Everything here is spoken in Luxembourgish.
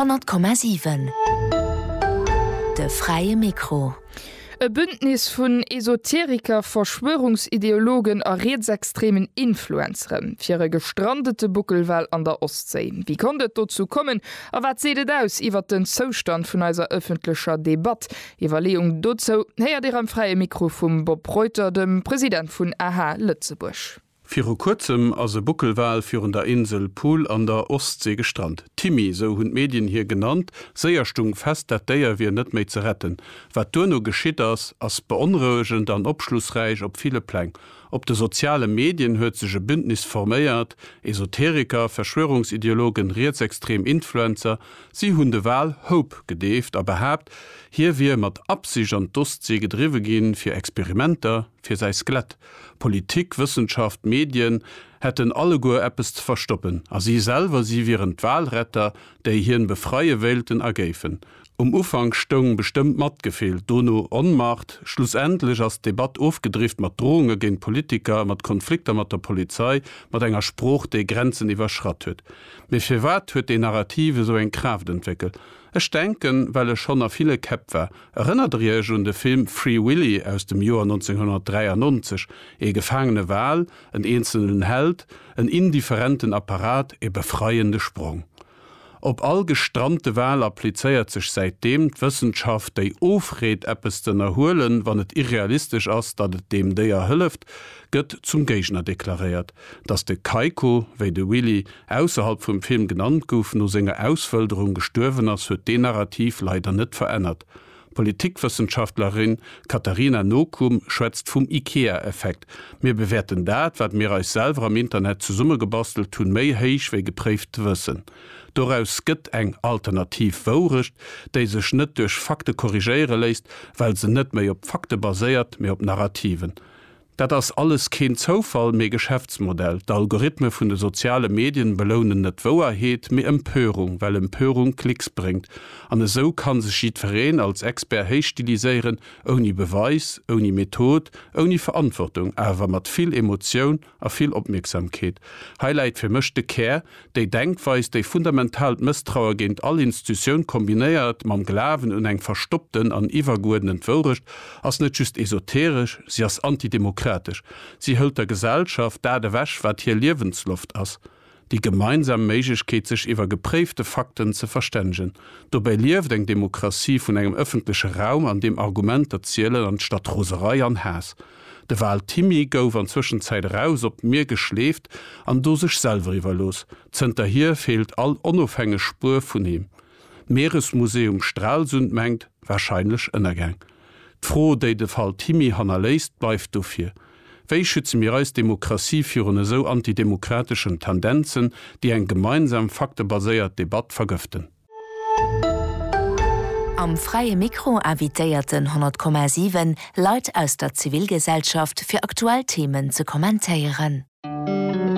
Honnert Komma siwen, de fräie Mikro. E Bündnis vun Esoteriker, Verschwörungsideologen a rietsextremen Influencere fir e gestrandete Buckelwal an der Ostséi. Wéi konnt et dozou kommen a wat seet et aus iwwert den Zoustand vun eiser ëffentlecher Debatt? Iwwerleeung dozou héiert Dir am Fräie Mikro vum Bob Reuter, dem President vun aha Lëtzebuerg. Viru kuerzem ass e Buckelwal virun der Insel Pool an der Ostsee gestrant. D'Timmy, sou hunn d'Medien hie genannt, séier stung fest, dat Déier wier net méi ze retten. Wat duerno geschitt ass, ass beonrouegend an opschlussräich op ville Pläng. Op de soziale Medien huet sech e Bündnis forméiert, Esoteriker, Verschwörungsideologen, rietsextrem Influencer. Si hunn de Wal Hope gedeeft a behaapt, hie wier mat Absicht an d'Ostsee gedriwwe ginn, fir Experimenter, fir säi Skelett Politik, Wëssenschaft, Medien hätten alleguer eppes ze verstoppen a si selwer, si wieren d'Walretter, déi hien befreie wéilten a géifen. Um Ufank stoung bestëmmt Matgefill, dono Onmacht. Schlussendlech ass d'Debatt ofgedrifft mat Drohunge géint Politiker, mat Konflikter mat der Polizei, mat enger Sprooch, déi Grenzen iwwerschratt huet. Mee firwat huet déi Narrativ esou eng Kraaft entwéckelt? Ech denken, well e schonn a ville Käpp war. Erënnert der Iech un de Film Free Willy aus dem Joer 1993? Ee gefaangene Wal, en eenzelnen Held, en indifferenten Apparat, e befreiende Sprong. Op all gestrante Wal applizéiert sech säitdeem d'Wëssenschaft, déi ofreet, eppes z'ënnerhuelen, wann et irrealistesch ass, datt et deem Déier hëlleft, gëtt zum Géigner deklaréiert. Datt de Keiko, wéi de Willy ausserhalb vum Film genannt gouf, no senger Auswëlderung gestuerwen ass, huet deen Narrativ leider net verännert. D'Politikwëssenschaftlerin Katarina Nokum schwätzt vum Ikea-Effekt, Mir bewäerten dat, wat mir eis selwer am Internet zesummegebastelt hunn, méi héich wéi gepréift Wëssen. Doraus gëtt eng alternativ Wourecht, déi sech net duerch Fakte korrigéiere léisst, well se net méi op Fakte baséiert, mee op Narrativen. Dat ass alles keen Zoufall, mee Geschäftsmodell. D'Algorithme vun de soziale Medien belounen net Wouerheet, mee Empörung, well Empörung Klicks bréngt. An esou kann sech jiddfereen als Expert héichstiliséieren, ouni Beweis, ouni Method, ouni Verantwortung, awer mat vill Emotioun a vill Opmierksamkeet. Hei läit fir mech de Kär, déi Denkweis, déi fundamentaalt Mësstraue géint all Instutioun kombinéiert mam Glawen un eng verstoppten an iwwergeuerdnent Wourecht, ass net just esoteresch, si ass antidemokratesch. Si hëlt der Gesellschaft dat ewech, wat hir Liewensloft ass. Déi gemeinsam Méiglechkeet sech iwwer gepréifte Fakten ze verstännegen. Dobäi lieft eng Demokratie vun engem ëffentleche Raum an deem Argumenter zielen anstatt Roserei an Haass. De Val Thimmy gouf an Zwëschenzäit eraus op d'Mier geschleeft an do sech selwer iwwerlooss. Zënterhier feelt all onofhängeg Spuer vun him. D'Mieresmuseum Stralsund mengt, wahrscheinlech Ënnergäng. D'Fro déi de Val Thimmy hannerléisst bleift dofir, Wéi schütze mir eis Demokratie virun esou antidemokrateschen Tendenzen, déi eng gemeinsam faktebaséiert Debatt vergëften? Am Fräie Mikro invitéierten 100,7 Leit aus der Zivilgesellschaft fir aktuell Themen ze kommentéieren.